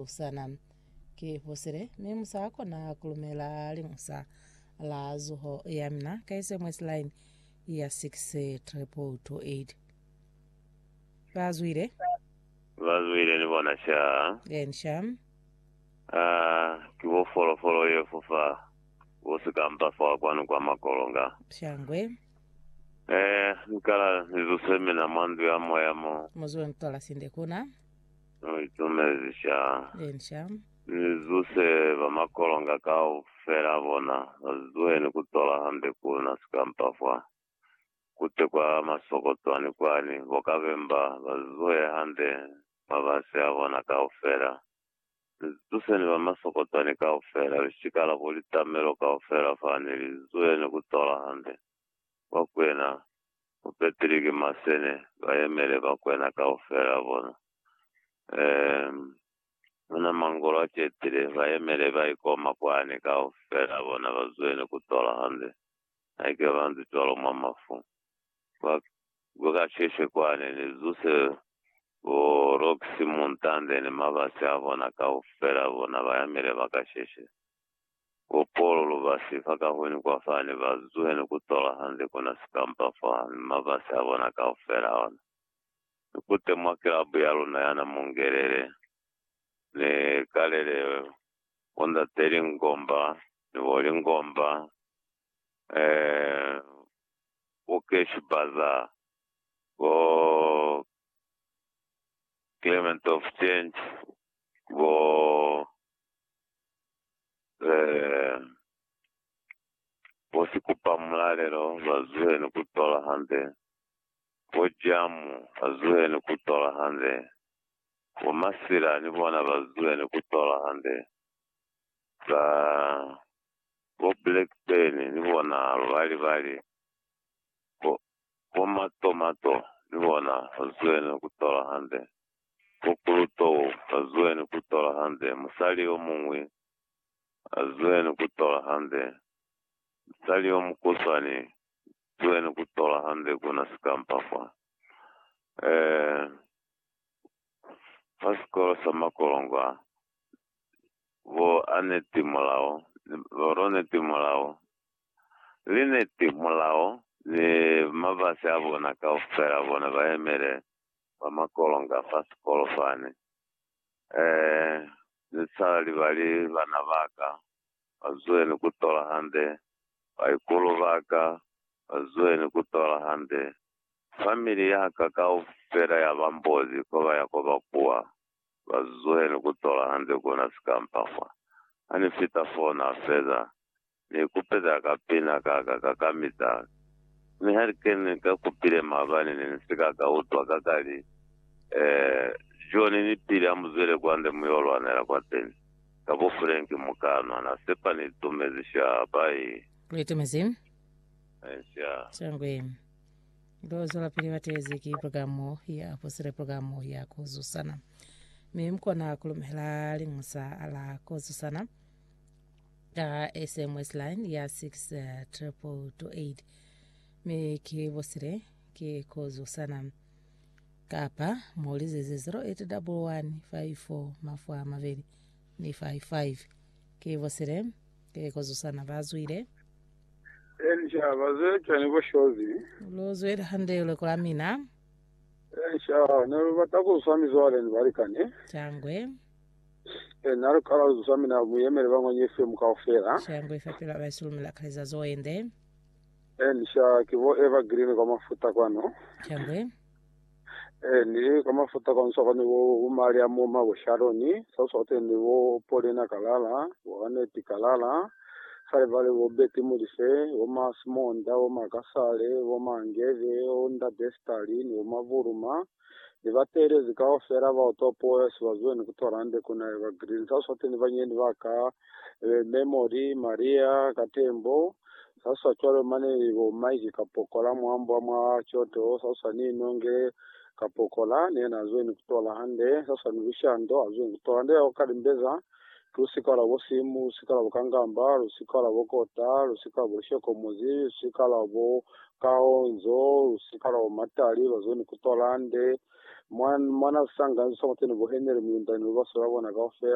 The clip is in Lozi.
Sana. Ki fosile, mi mu sa kona kulumela liñusa la zuho ya mina ka SMS line ya 62228. Ba zwile. Ba zwile ni bona sha. Then sha. Ah, ki bo folofolo ye fofa bo sikampa fa kwanu kwa makolonga. Shangwe. Eh, nkala ni zuse mina mwa ndu ya moya mo. Muzwe ntola sinde kuna. Ni itumezi sha. Eni sha. Ni zuse ba makolonga kaufela a bona, ba zuhe ni ku tola hande ku na sikampa fa kute kwa masoko twani kwani, bo kabemba, ba zuhe hande mabasi a bona kaufela. Ni zituseni ba masoko twani kaufela, lishikala bo litamelo kaufela fa, ni li zuhe ni ku tola hande. bakwena bo Petri ki masene, ba yemele bakwena kaufela bona. Eem, ona mangolo a cetile, ba yemele ba ikoma kwani kaufela bona ba zwene ku tola hande. Haike ba nzi cwalo mwa mafu, ba, ba ka sheshe kwani, ni zuse bo Roxy, Muntande, ni mabasi a bona kaufela bona ba yemele ba ka sheshe. Bo Polo lu ba si fa kahwini kwa fa ne ba zuhene ku tola hande ku na sikampa fa ni mabasi a bona kaufela a ona. Ni kute mwa kilabu ya luna ya na mungelele, ni kalele bo Ndate Lingomba ni bo Lingomba, eeh, bo Cash Bazaar, bo Clement of Change, bo Ze bo si kupa mulalelo ba zuhe ni ku tola hande, bo Jamu ba zuhe ni ku tola hande, bo Masila ni bona ba zuhe ni ku tola hande, ba bo Blackburn ni bona ba bali bali, bo Bo matomato ni bona ba zueni ku tola hande, bo kulutou ba zueni ku tola hande, musali yo muñwi a zueni ku tola hande, musali yo mukuswani zueni ku tola hande ku na sikampa fa. Eh, fa sikolo sa makolongo a, bo Aneti Molao ni, bo Roneti Molao Liniti, Mulao ni mabasi a bona kaufela bona ba yemele ba makolonga fa sikolo fani. Ee, ni sala libali bana ba ka, ba zueni ku tola hande, baikulu ba ka, ba zueni ku tola hande. Famili ya ka kaufela ya ba mbozi ko ba ya ko ba kuwa, ba zueni ku tola hande kuna sikampa fa. Ha ni fita foo na feza, Ni kupeza ka pina ka ka ka ka mitala. Mi ha ni kene ni ka kupile maabani ne ni si ka ka utwa ka ka li, Eh, John ni Billy amuzwele kwande mu yo lwanela kwateni. Ka bo Frank mu ka nwa. Na sepa ni itumezi shaa. Bai. Lu itumezi? Amen shaa. Shangwe. Lo zwela pili batezi ki programo ya apostele programo ya ku zusana. Mi mukona ku lumela liñusa la ku zusana. Ka SMS line ya 62228 mi ki bosile ki kozo sana. Kapa mo lizeze 081154 mafwa mabeli ni 55 ki bosile ki kozo sana ba zwile. Ensha bazwele cwani bo Shozi? Lu zwile hande lweko la mina. Ensha ne lu bata ku swa mizwale ni balikani. Cangwe. Eh, na lukala lu zwa, mi na mu yemele ba ngwanye FM kaufela. Sha ngwe fa pelo aba isulu mi la kaleza zo ende. Eh, ni sha ki bo Eva Green kwa mafuta kwano. Sha ngwe. Eh, ni kwa mafuta kwano sa kwani bo umali a moma bo Sharoni, sa sa kwani ni bo Polina Kalala, bo Aneti Kalala, sa le bale bo Betty Mulise, bo Masimonda, bo Makasale, bo Mangeve, bo Nda Destali, ni bo Mavuruma. ni ba teelezi kaufela ba utwa puo ya Swazuen ku Torande ku na ba Green sa swati ni banyendi ba ka be Memory, Maria, Katembo, sa swa cwalo mane ni bo Mike Kapokola mwambwa mwa Kyoto, sa swa ni Nonge Kapokola ni yena azweni ku Torahande, sa swa ni Lushando azweni ku Torande ya kwa Kalimbeza. Lusika lwa bo simu, lusika lwa bo kangamba, lusika lwa bo kota, lusika lwa bo lishokomozi, lusika lwa bo kaonzo, lusika lwa bo matali, lwa zone kutwa lande, mwa, mwa na sanga nzo sa muteni bo Henry Muyundani, lubasi lwa bona kaufela.